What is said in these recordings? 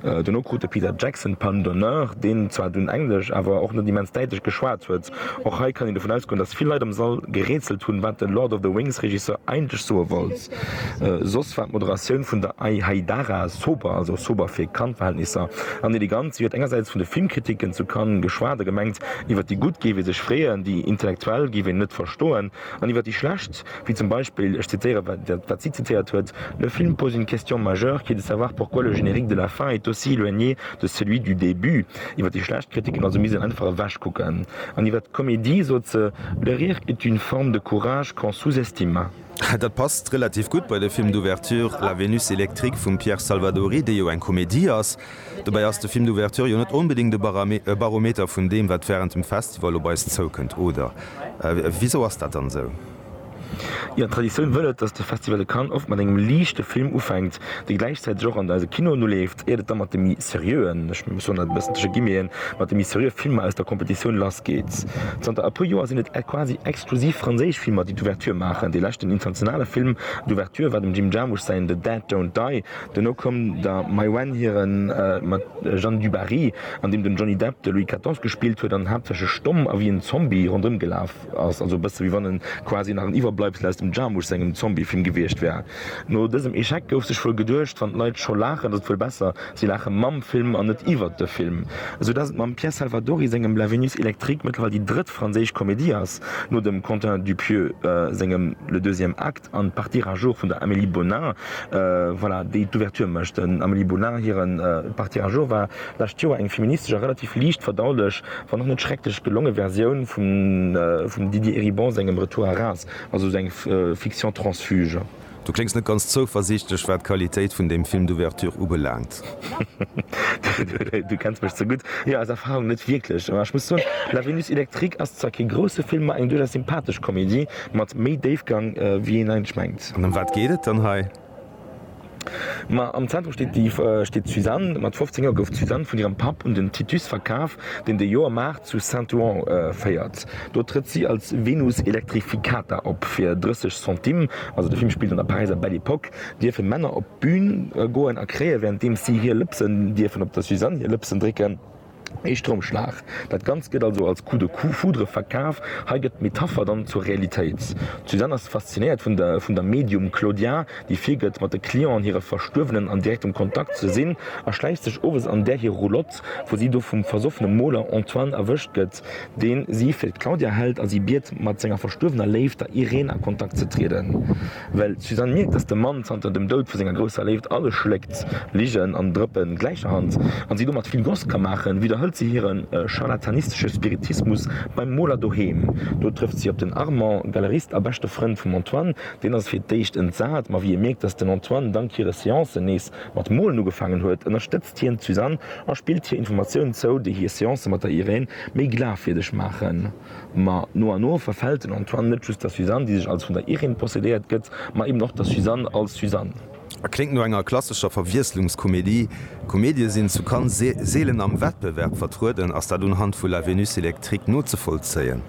Dono krut de Peter Jackson d'Palme d'honneur, deen zwar dunn Englesch, awer och net immens däitlech geschwat huet. Och hei kann een dovun ausgoen, datt vill Leit am Sall gerätselt hunn, wat de Lord of the Rings Regisseur eigentlech soe wollt. Soss war d'Moderatioun vun der Ai Haidara sober, also sober fir Cannes-Verhältnisser, an elegant. Si huet engersäits vun de Filmkritiken zu Cannes geschwat a gemengt, iwwer déi Gutt géif ee sech freeën, déi Intellektuell géif een net verstoen, an iwwer déi Schlecht, Wéi zum Beispill, ech zitéiere wat si zitéiert huet, Le film pose une question majeure qui est de savoir pourquoi le générique de la fin est aussi éloigné de celui du début. Iwwer déi schlecht Kritiken, also misst een einfach ewechkucken. An iwwer d'Comédie sot se, Le rire est une forme de courage qu'on sous-estime. Dat passt relativ gutt bei de Film d'ouverture La Vénus électrique vum Pierre Salvadori, dee jo eng Comédie ass. Dobäi ass de Film d'Ouverture jo net onbedéngt e Barometer vun deem, wat wärend dem Festival op eis zoukënnt, oder? Wisou ass dat dann esou? Jo, d'Traditioun wëll et, dass de Festival de Cannes oft mat engem liichte Film ufänkt, dee gläichzäiteg och an eise Kinoen uleeft, iert et da mat de méi seriöen, ech soen dat e bëssen tësche Guillemeten, mat de méi seriö Filmer aus der Competitioun lassgeet. Zanter e puer Joer sinn et quasi exklusiv franséisch Filmer, déi d'Ouverture maachen. Dee leschten internationale Film d'Ouverture war dem Jim Jarmusch säin The Dead Don't Die. Dono koum der Mai Wen hiren mat Jeanne du Barry, an deem den Johnny Depp de Louis Quatorze gespillt huet an haaptsächlech stomm a wéi en Zombie ronderëm gelaf ass, also e bësse wéi wann e quasi nach en Iwwerbleibsel aus dem Jarmusch sengem Zombiefilm gewiescht wär. No dësem Echec gouf sech wuel geduecht, wann d'Leit scho laachen, ass et wuel besser, si laache mam Film an net iwwert de Film. Sou dass et mam Pierre Salvadori sengem La Vénus électrique mëttlerweil déi drëtt franséisch Komedie ass, no dem Quentin Dupieux sengem Le deuxième acte, An d'Partie à jour vun der Amélie Bonin, voilà, déi d'Ouverture mécht. Dem Amélie Bonin hire Partie à jour war d'lescht Joer eng feministesch a relativ liicht verdaulech, wann och net schrecklech gelonge Versioun vum Didier Eribon sengem Retour à Reims, also sou eng Fiction transfuge. Du kléngs net ganz zouversiichtlech wat d'Qualitéit vun deem Film d'Ouverture ubelaangt. Du kenns mech ze gutt. Jo, aus Erfarung net wierklech. Mä ech muss soen, La Vénus électrique ass zwar kee grousse Film, ma eng duerchaus sympathesch Komedie mat méi Déifgang, wéi een eigentlech mengt. An ëm wat geet et dann hei? Ma am Zentrum steet déi steet d'Suzanne. Mat 15 Joer gouf d'Suzanne vun hirem Papp un den Titus verkaf, deen de Joermaart zu Saint-Ouen féiert. Do trëtt si als Venus electrificata op. Fir 30 Centimes, also de Film spillt an der Paräiser Belle Epoque, dierfe Männer op. D'Bühn goen a kréien, während deem si hir Lëpsen dierfen op der Suzanne hir Lëpsen drécken, ee Stroumschlag. Dat Ganzt gëtt also als Coup de foudre verkaf. Hei gëtt d'Metapher dann zur Realitéit. D'Suzanne ass faszinéiert vun der Medium Claudia, déi virgëtt, mat de Clienten, hire Verstuerwenen, an direktem Kontakt ze sinn, a schläicht sech owes an där hir Roulotte, wou si do vum versoffene Moler Antoine erwëscht gëtt, dee si fir d'Claudia hält a si biet, mat senger verstuerwener Léift, der Irène a Kontakt ze trieden. Well d'Suzanne mierkt, dass de Mann zanter dem Doud vu senger grousser Léift alles schléckt, Ligen an Drëppen gläicherhand, an si domat vill Goss ka maachen, widderhëlt se hire charlatanistesche Spiritismus beim Moler doheem. Do trëfft si op den Armand, Galerist a beschte Frënd vum Antoine. Deen ass fir d'éischt entsat, ma wéi e mierkt, dass den Antoine dank hire Seancen nees mat molen ugefaangen huet, ënnerstëtzt hien d'Suzanne a spillt hir Informatiounen zou, déi hir Seancë mat der Irène méi glafwierdeg maachen. Ma no an no verfält den Antoine net just der Suzanne, déi sech als vun der Irène possédéiert gëtt, ma eben och der Suzanne als Suzanne. A kléngt no enger klassescher Verwiesslungskomedie. Komedië sinn zu Cannes seelen am Wettbewerb vertrueden. Ass dat unhand vu La Vénus électrique nozevollzéien?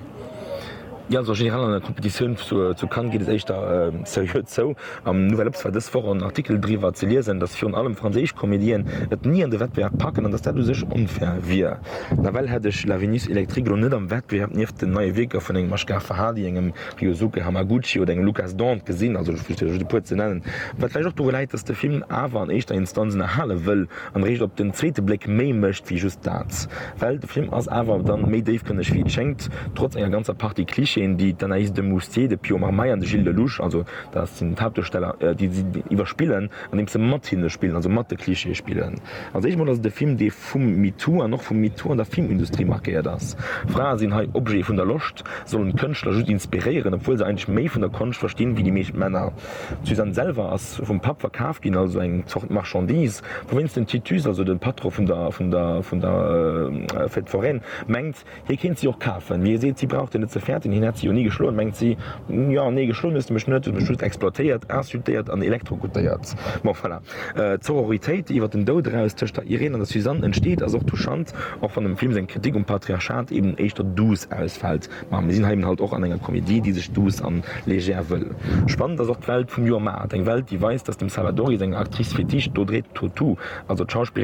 Jo, also generell an der Competitioun zu Cannes geet et éischter seriö zou. Am Nouvel Obs war dës Woch en Artikel driwwer ze liesen, datt virun allem franséisch Comédieen et ni an de Wettbewerb packen an datt dat u sech onfair wier. Nawell hätt ech La Vénus Électrique elo net am Wettbewerb nieft den neie Wierker vun engem Ashgar Farhadi, engem Ryosuke Hamaguchi oder engem Lukas Dont gesinn, also just fir e puer ze nennen. Wat vläicht och doru läit, datt de Film awer an éischter Instanz ënnerhale wëll an eréischt op den zweete Bléck méi mécht wéi just dat. Well de Film ass awer dann méi déifgrënneg wéi et schéngt, trotz enger ganzer Partie Clichéen, déi d'Anaïs de Moustier, de Pio Marmaille an de Gilles Lellouche, also Dat sinn d'Haaptduersteller, déi si iwwerspillen, andeems se mat hinne spillen, also mat de Klischeeë spillen. Als éischt emol ass et e Film, dee vum MeToo an och vum MeToo an der Filmindustrie markéiert ass. Frae sinn hei Objete vun der Loscht, sollen d'Kënschtler just inspiréieren, obwuel se eigentlech méi vun der Konscht verstinn, wéi déi meescht Männer. D'Suzanne selwer ass vum Papp verkaf ginn, also eng Zort Marchandise, wouwéinst den Titus, also de Patron vun der Fête Foraine, mengt, Hie kéint si och kafen, mee hie seet, si brauch deen net ze fäerten, hien hätt si jo ni geschloen, mengt si. Jo, nee, geschloen hues de mech net, hues mech just exploitéiert, insultéiert an elektrokutéiert. Bon, voilà. D'Sororitéit, déi iwwer den Doud eraus tëscht der Irène an der Suzanne entsteet, ass och touchant, och wann dem Film seng Kritik um Patriarchat eben éischter douce ausfält. Ma mir sinn hei eben halt och an enger Komedie, déi sech douce an légère wëll. Spannend ass och d'Welt vum Joer Maart, eng Welt, déi weist, dass dem Salvadori seng Actrice fétiche d'Audrey Tautou, also d'Schauspillerin,